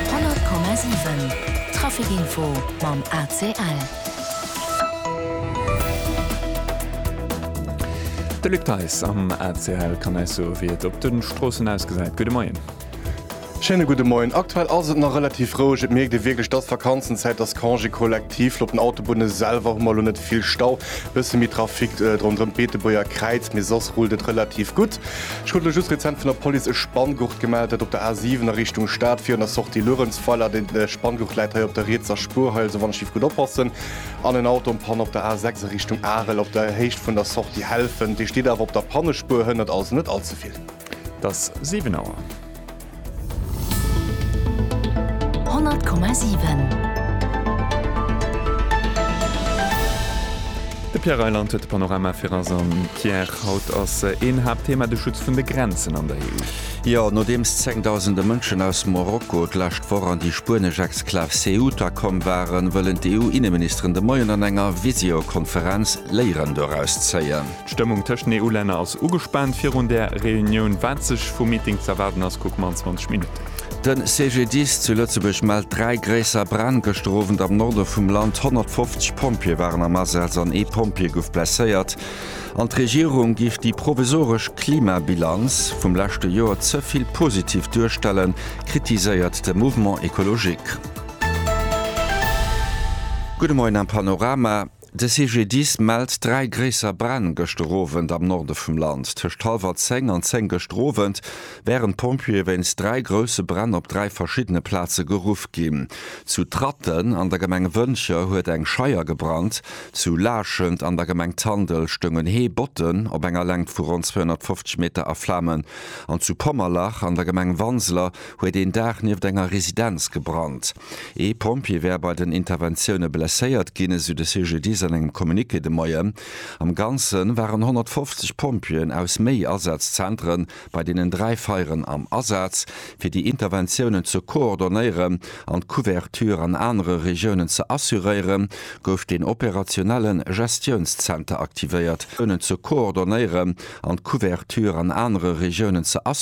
100,7 Trafic Info mam ACL. De Luc Theis am ACL kann eis soe wéi et op de Stroossen ausgesäit. Gudde Moien. Schéine gudde Moien. Aktuell ass et nach relativ roueg. Et mierkt ee wierklech, et ass Vakanzenzäit, et ass Congé collectif. Lo op den Autobunne selwer hu mer lo net vill Stau, e bësse méi Trafic ronderëm d'Beetebuerger Kräiz, mee soss rullt et relativ gutt. Ech krut elo just rezent vun der Police e Spanngurt gemellt, dat op der A7 a Richtung Stad virun der Sortie Luerenzweiler. Deen Spanngurt läit hei op der rietser Spuerhëll, esou wann ech giff gutt oppassen, an en Auto um Panne op der A6 a Richtung Arel op der Héicht vun der Sortie Helfent. Dee steet awer op der Pannespuer, hënnert also net all ze vill. Et ass 7 Auer. 100,7. De Pierre Reyland huet de Panorama fir eis. An Pierre, haut ass een Haaptthema de Schutz vun de Grenzen an der EU. Jo, nodeems zengdausende Mënschen aus Morocco d'lescht Woch an déi spuenesch Exklav Ceuta komm waren, wëllen d'EU-Inneministeren de Moien an enger Visiokonferenz Léieren doraus zéien. D'Stëmmung tëscht den EU-Länner ass ugespaant virun där Reunioun. Wat sech vum Meeting z'erwaarden ass, kucke mer an 20 Minutten. De CGDIS zu Lëtzebuerg mellt dräi gréisser Bränn gëschter Owend am Norde vum Land. 150 Pompjeeë waren am Asaz an ee Pompjee gouf blesséiert. An d'Regierung géif déi provisoresch Klimabilanz vum leschte Joer ze vill positiv duerstellen, kritiséiert de Mouvement Ecologique. Gudde Moien am Panorama. De CGDIS mellt dräi gréisser Bränn gëschter Owend am Norde vum Land. Tëscht hallwer 10 an 10 gëschter Owend wären d'Pompjeeë wéinst dräi grousse Bränn op dräi verschiddene Plaze geruff ginn. Zu Tratten an der Gemeng Wëntger huet eng Scheier gebrannt. Zu Laachent an der Gemeng Tandel stoungen Hee Botten op enger Längt vu ronn 250 Meter a Flamen an zu Pommerlach an der Gemeng Wanseler huet een Daach nieft enger Residenz gebrannt. Ee Pompjee wär bei den Interventioune blesséiert ginn, esou de CGDIS an engem Communiqué de Moien. Am Ganze waren 150 Pompjeeën aus méi Asazzentere bei deenen dräi Feieren am Asaz, fir déi Interventiounen ze koordonéieren an d'Couverture an anere Regiounen ze assuréiere gouf den operationelle Gestiounszenter aktivéiert, ze koordonéieren an d'Couverture an anere Regiounen ze assuréiere.